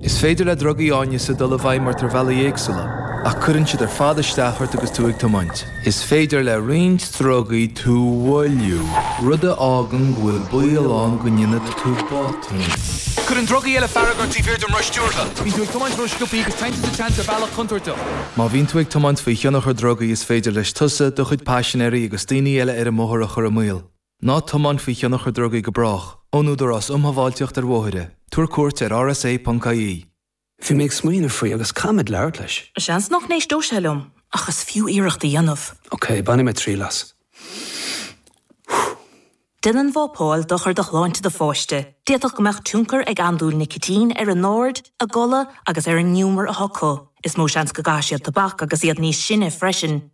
Is féidir le drugaí áineasa dul i bhfeidhm ort ar bhealaí éagsúla, ach cuireann siad ar fad isteach ort agus tú ag tiomáint. Is féidir le roinnt drugaí tú a mhoilliú, rud a fhágann go bhfuil baol ann go ndéanfaidh tú botúin. Cuireann drugaí eile fearg ort taobh thiar de roth stiúrtha. Bíonn tú ag tiomáint rósciobtha agus téann tú sa tseans ar bhealach contúirteach. Má bhíonn tú ag tiomáint faoi thionchar drugaí is féidir leis tusa, do chuid paisinéirí agus daoine eile ar an mbóthar a chur i mbaol. Ná tiomáin faoi thionchar drugaí go brách. Ón Údarás Um Shábháilteacht ar Bhóithre, Tabhair cuairt ar rsa.ie. Bhí mé ag smaoineamh faoi agus caithfimid labhairt leis. Seans nach n-éisteodh sé liom, ach is fiú iarracht a dhéanamh. Ok, bainfidh mé triail as. Déanann vapáil dochar do shláinte do pháiste. D'fhéadfadh go mbeadh tionchar ag andúil nicitín ar a n-aird, a gcodladh agus ar an ngiúmar atá acu. Is mó seans go gcaithfidh siad tobac agus iad níos sine freisin.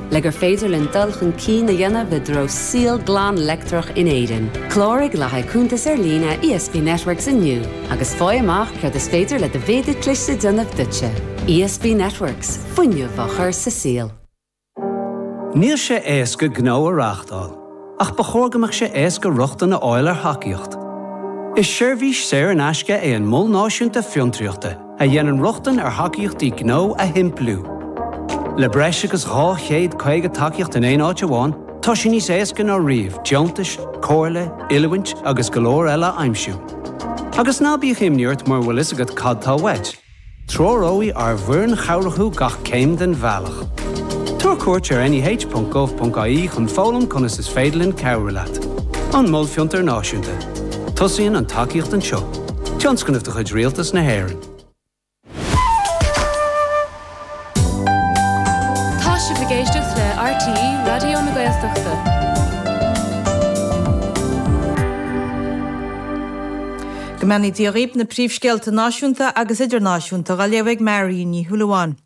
Le gur féidir linn dul chun cinn a dhéanamh i dtreo saol glan leictreach in Éirinn, cláraigh le haghaidh cuntas ar líne ESB Networks inniu agus faigh amach céard is féidir le do mhéadar cliste a dhéanamh duitse. ESB Networks, fuinneamh á chur sa saol. Níl sé éasca gnó a reáchtáil, ach ba chóir go mbeadh sé éasca rochtain a fháil ar thacaíocht. Is seirbhís saor in aisce é an Mol Náisiúnta Fiontraíochta. a dhéanann rochtain ar thacaíochtaí gnó a shimpliú. Le breis agus 250 tacaíocht in aon áit amháin, tá sé níos éasca ná riamh deontais, comhairle, oiliúint agus go leor eile a aimsiú. Agus ná bíodh imní ort mura bhfuil a fhios agat cad tá uait, treoróidh ár bhfoireann chabhrach thú gach céim den bhealach. Tabhair cuairt ar neh.gov.ie chun foghlaim conas is féidir linn cabhrú leat. An Mol Fiontar Náisiúnta. Tosaíonn an tacaíocht anseo. Tionscnamh de chuid Rialtas na hÉireann. Tá sibh ag éisteacht le RTÉ Raidió na Gaeltachta. Go mbeannaí Dia dhaoib, na príomhscéalta náisiúnta agus idirnáisiúnta dha léamh ag Máirín Ní Shúilleabháin.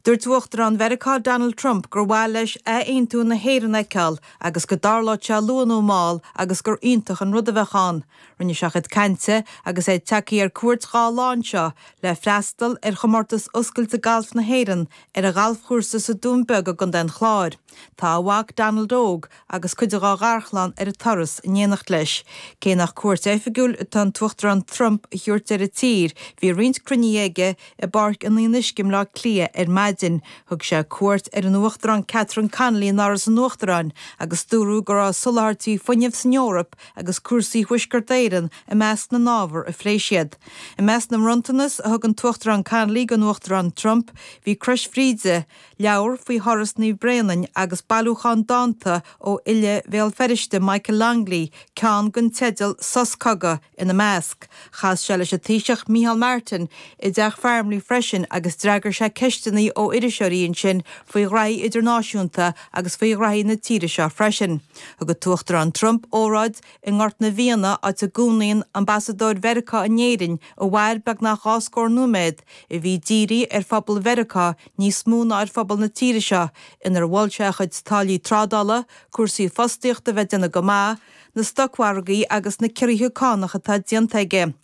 Dúirt Uachtarán Mheiriceá Donald Trump gur mhaith leis athaontú na hÉireann a fheiceáil agus go dtarlódh sé luath nó mall agus gur iontach an rud a bheadh ann. Rinne sé a chuid cainte agus é ag teacht ar cuairt dhá lá anseo le freastal ar Chomórtas Oscailte Gailf na hÉireann ar a ghalfchúrsa sa Dún Beag i gContae an Chláir. Tá a mhac Donald Óg agus cuid dá gharchlann ar an turas in éineacht leis. Cé nach cuairt oifigiúil atá an tUachtarán Trump a thabhairt ar an tír, bhí roinnt cruinnithe aige i bPáirc an Fhionnuisce i mBleá Cliath ar maidin. Thug sé cuairt ar an Uachtarán Catherine Connolly in Áras an Uachtaráin agus dúradh go raibh soláthairtí fuinnimh san Eoraip agus cúrsaí Thuaisceart Éireann i measc na n-ábhar a phléigh siad. I measc na mbronntanas a thug an tUachtarán Connolly don Uachtarán Trump, bhí Crois Bhríde, leabhar faoi Thuras Naomh Bréanainn agus bailiúchán dánta ó fhile Bhéal Feirste Michael Longley, ceann dan teideal 'Sos Cogaidh', ina measc. Chas sé leis an Taoiseach Micheál Martin i dTeach Farmleigh freisin agus d'fhreagair sé ceisteanna ó iriseoirí ansin faoi ghraithí idirnáisiúnta agus faoi ghraithí na tíre seo freisin. Thug an tUachtarán Trump óráid i nGort na bhFianna, áit a gcónaíonn Ambasadóir Mheiriceá in Éirinn a mhair beagnach dhá scór nóiméad, a bhí dírithe ar phobal Mheiriceá, níos mó ná ar phobal na tíre seo inar mhol sé a chuid táillí trádála, cúrsaí fostaíochta a bheith ag déanamh go maith, na stocmhargaí agus na ciorruithe cánach atá déanta aige.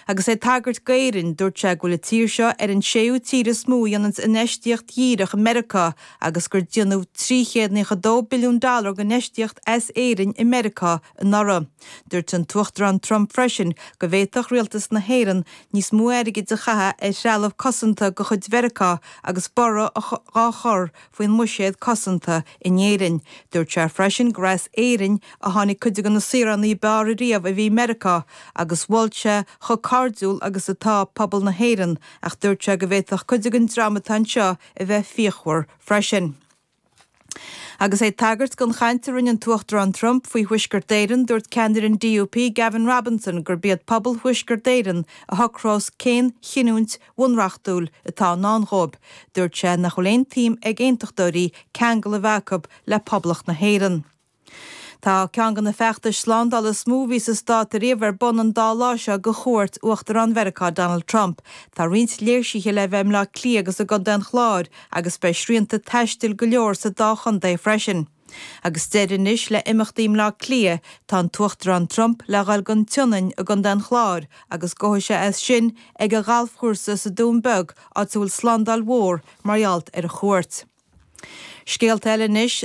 Agus é ag tagairt d'Éirinn, dúirt sé go bhfuil an tír seo ar an séú tír is mó a dhéanann infheistíocht dhíreach i Meiriceá agus gur déanadh trí chéad naocha dó billiún dollar d'infheistíocht as Éirinn i Meiriceá anuraidh. Dúirt an tUachtarán Trump freisin go bhféadfadh Rialtas na hÉireann níos mó airgid a chaitheamh ar threalamh cosanta de chuid Mheiriceá agus borradh á chur faoin mbuiséad cosanta in Éirinn. Dúirt sé freisin gur as Éirinn a tháinig cuid de na saoránaigh ab fhearr riamh a bhí i Meiriceá agus mhol sé chomh cairdiúil agus atá pobal na hÉireann ach dúirt sé go bhféadfadh cuid den dream atá anseo a bheith fíochmhar freisin. Agus é ag tagairt don chaint a rinne an tUachtarán Trump faoi Thuaisceart Éireann, dúirt ceannaire an DUP, Gavin Robinson, gurb iad pobal Thuaisceart Éireann a shocrós cén chinniúint bhunreachtúil atá i ndán dhóibh. Dúirt sé nach bhfuil aon tsuim ag Aontachtóirí ceangal a bheith acu le Poblacht na hÉireann. Tá ceann de na feachtais slándála is mó a bhí sa stát riamh ar bun an dá lá seo de chuairt Uachtarán Mheiriceá Donald Trump. Tá roinnt léirsithe le bheith i mBleá Cliath agus i gcontae an Chláir agus beidh srianta taistil go leor sa dá chontae freisin. Agus deireadh anois le imeachtaí i mBleá Cliath, tá an tUachtarán Trump le dhul go dtí an tSionainn i gcontae an Chláir agus gabhfaidh sé as sin ag a ghalfchúrsa sa Dún Beag, áit a bhfuil slándáil mhór mar gheall ar a chuairt. Scéalta eile anois.